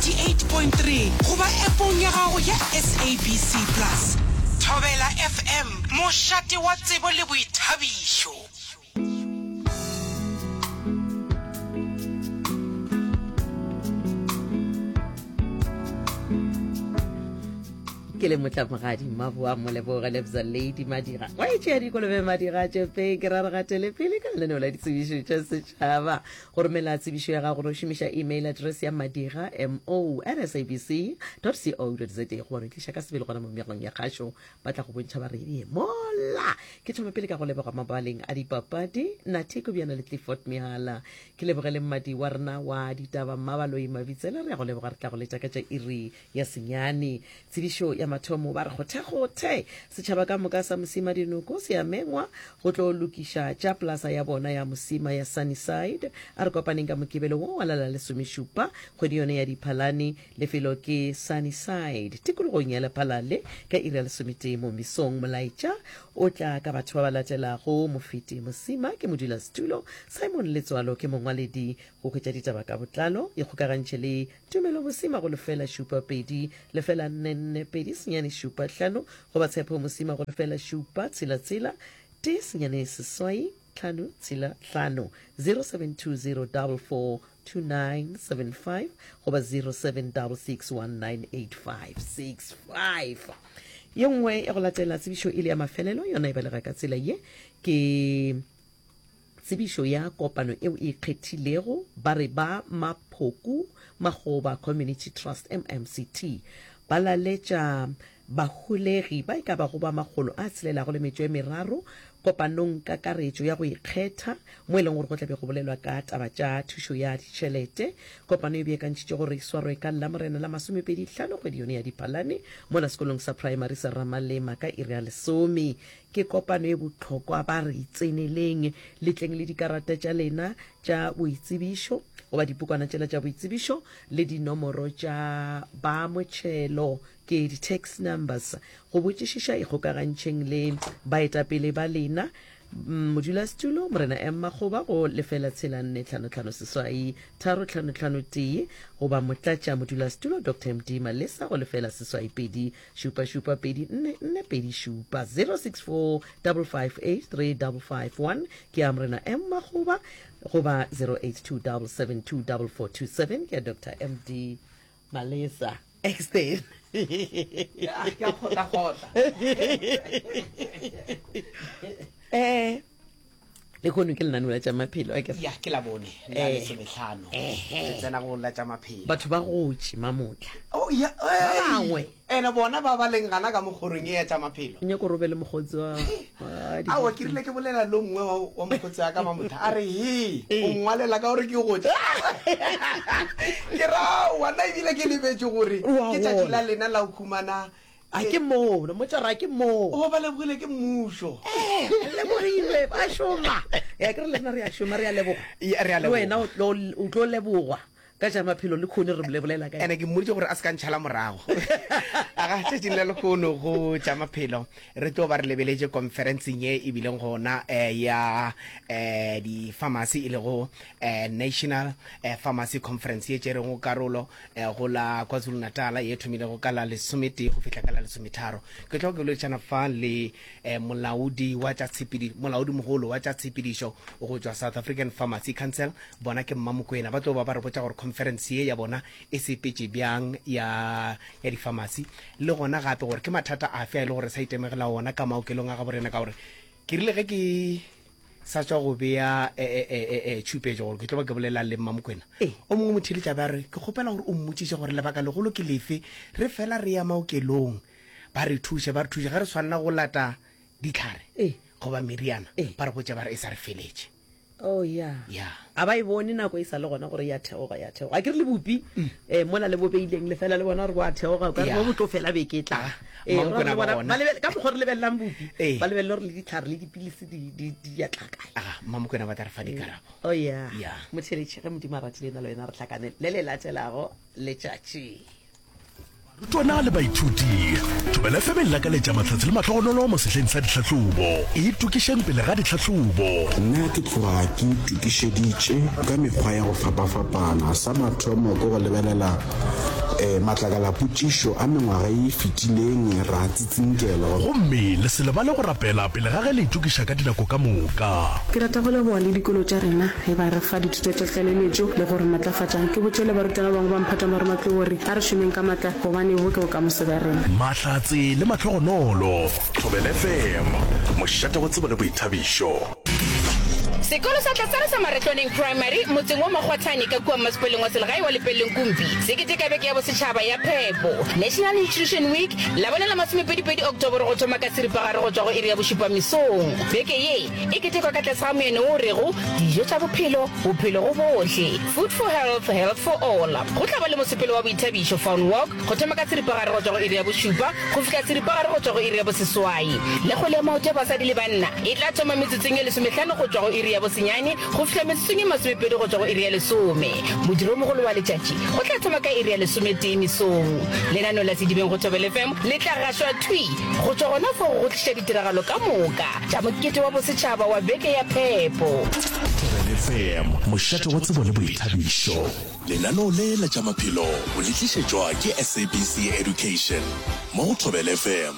98.3 goba App-ong ya gago ya SABC Plus. Thobela FM, mošate wa tsebo le boithabišo. ke le motlamogadi mmaboa moleboge lebza lady madira wa e tšea dikolobe madira tšepeng ke raragatele pele ka lenaneo la ditsebišo tša setšhaba Go romela tsebišo ya gago no šomiša email address ya madira, MO, at sabc dot co dot za Go re tliša ka sebele gona mo meagong ya kgašo ba tla go bontšha ba reng Mola! Ke thome pele ka go leboga mabaleng a dipapadi Nathy Kobjana le Clifford Mehala. Ke lebogele mmadi wa rena wa ditaba Mmabaloi Mabitsela. Re a go leboga re tla go letša ka tša iri ya senyane. Tsebišo ya mathomo ba re kgothekgothe setšhaba ka moka sa Mosima Dinoko se a mengwa go tlo lokiša tša plaza ya bona ya Mosima ya Sunnyside. A re kopaneng ka Mokibelo wo wa la la lesomešupa kgwedi yone ya Diphalane. Lefelo ke Sunnyside tikologong ya Lephalale ka iri ya lesometee mo mesong. Molaetša o tla ka batho ba ba latelago, Mofeti Mosima ke modulasetulo, Simon Letswalo ke mongwaledi, go hwetša ditaba ka botlalo ikgokagantšhe le Tumelo Mosima go lefela šupa pedi lefela nne nne pedi senyane šupa hlano goba Tshepo Mosima go lefela šupa tshela tshela tee senyane seswai tlhano tshela hlano 0720442975 goba 0766198565. Ye nngwe ya go latela tsebišo e le ya mafelelo yona e balega ka tsela ye ke. Tsebišo ya kopano eo e ikgethilego ba re ba Maphoku Makgoba Community Trust, MMCT, ba laletša baholegi ba e ka bago ba makgolo a tshelelago le metšo e meraro kopanong kakaretšo ya go ikgetha mo e leng gore go tla be go bolelwa ka taba tša thušo ya ditšhelete. Kopano e beakantšitšwe gore e swarwe ka Lamorena la masomepedi hlano kgwedi yone ya Diphalane mola sekolong sa praemari sa Ramalema ka iri ya lesome Ke kopano e bohlokwa, ba re tseneleng. Le tleng le dikarata tša lena tša boitsebišo, goba dipukwana tšela tša boitsebišo, le dinomoro tša ba motšhelo, ke di-tax numbers. Go botšišiša, ikgokagantšheng le baetapele ba lena. Modulasetulo, Morena M. Makgoba, go lefela tshela nne tlhano tlhano seswai tharo tlhano tlhano tee, goba Motlatša modulasetulo, Doctor MD. Malesa, go lefela seswai pedi šupa šupa pedi nne nne pedi šupa 0645583551 ke ya morena m makgoba goba 0827724427 ke ya dr md malesa exten um eh, le kono ke lenaneo la tša maphelo a kere ya ke la bone la Eh. lesometlhano Ehe. ke tsena go la tša maphelo batho ba gotše mamotla Oh, ya- ei. bangwe. ene bona ba ba leng gana ka mokgorong e ya tša maphelo nyako robe le mokgotsi wa wa di- ao ke rile ke bolela lo nngwe wa wa mokgotsi wa ka mamotha a re he Ee. o ngwalela ka gore ke gotse ke ra wana ebile ke lebetse gore Wa ke tšatši gola. la lena la go humana A ke mono, mo tšara, a ke moo. O ba lebogile ke mmušo. Ee, re lebogilwe, ba šoma. Ya ke re le rena re a šoma, re a leboga. Ya, re a leboga. Le wena o tlo lebogwa ka tša maphelo le khone re bolela ka ene ke mmoditse gore a se ka ntšhala morago a ga tšatšing la lekgono go tša maphelo re tlo ba re lebeletše conferenceng e e bileng gona eh, ya eh, di-pharmacy e lego eh, national pharmacy conference ye tšerego karolo eh, go la kwazulu natala ye thomilego ka la lesometee go fihla ka la lesometharo ke tlo go boledišana fa le eh, molaodi wa tša tshepedi molaodi mogolo wa tša tshepedišo go tšwa south african pharmacy council bona ke mmamokwena ba tlo ba ba re botša gore conference ye ya bona e sepetše bjang ya ya dipharmacy le gona gape gore ke mathata afe a e le gore sa itemegela ona ka maokelong a gaborena ka gore ke rile ge ke sa tšwa go bea e-e-e-e-e tšhupetšo gore ke tlo ba ke bolelelang le Mmamokwena. O mongwe motheeletši a be a re, Ke kgopela gore o mmotšiše gore lebaka legolo ke lefe re fela re ya maokelong ba re thuše, ba re thuše ge re swanela go lata ditlhare goba meriana, ba re botša ba re e sa re feletše. Oh, ya. Ya. A ba e bone nako e sa le gona gore e a theoga, e a theoga? Akere le bopi eh, mola le bo beileng lefela le bona gore bo a theoga, o ka re bo bo tlo fela beke e tlang. Eh, Mang gore kona le ba bona, bona? ba lebele- ka mokgwa o re lebelelang bopi, Eh. ba lebelele gore le ditlhare le dipilisi di- di di ya tla kae. Ah, Mma Mokwena ba tla re fa dikarabo. Oh yeah. Yeah. Motheletše, ge Modimo a ratile nna le wena re hlakane le le latelago letšatši. Barutwana le baithuti, Thobela FM e le lakaletša mahlatse le mahlogonolo mo sehleng sa dihlahlobo. Itokišeng pele ga dihlahlobo. Nna ke tloga ke itokišeditše ka mekgwa ya go fapafapana. Sa mathomo ke go lebelela matlakalapotšišo a mengwaga ye e fetileng, ra Tsinkelo. Gomme le se lebale go rapela pele ga ge le itokiša ka dinako ka moka. Ke rata go leboga le dikolo tša rena ge ba re fa dithuto tša tlaleletšo le go re matlafatša. Ke botše le barutwana ba bangwe ba mphatang ba re matlou gore a re šomeng ka matla gobane bo ke bokamoso bja rena. Mahlatse le mahlogonolo. Thobelfm, mošate wa tsebo le boithabišo. Sekolo sa Tlasala sa Maretlwaneng Primary motseng wa Makgwathane ka kua Mmasepaleng wa Selegae wa Lepeleleng Kumpi se keteka Beke ya Bosetšhaba ya Phepo, National Nutrition Week, Labone la masomepedipedi Oktoboro go thoma ka seripagare go tšwa go iri ya bošupa mesong. Beke ye e ketekwa ka tlase ga moyane wo o rego Dijo tša Bophelo, Bophelo go Bohle, Food for Health, Health for All. Go tla ba le mosepelo wa boithabišo, Fawn Walk, go thoma ka seripagare go tšwa go iri ya bošupa go fihla seripagare go tšwa go iri ya boseswai, le kgwele ya maoto ya basadi le banna e tla thoma metsotsong ye lesomehlano go tšwa go iri ya bosenyane go fihla metsotsong ye masomepedi go tšwa go iri ya lesome. Modiro wo mogolo wa letšatši o tla thoma ka iri ya lesometee mesong. Lenaneo la Sedibeng go Thobela FM le tla gašwa thwi go tšwa gona fao go tliša ditiragalo ka moka tša Mokete wa Bosetšhaba wa Beke ya Phepo. Thobela FM, mošate wa tsebo le boithabišo. Lenaneo le la tša maphelo o le tlišetšwa ke SABC Education mo go Thobela FM.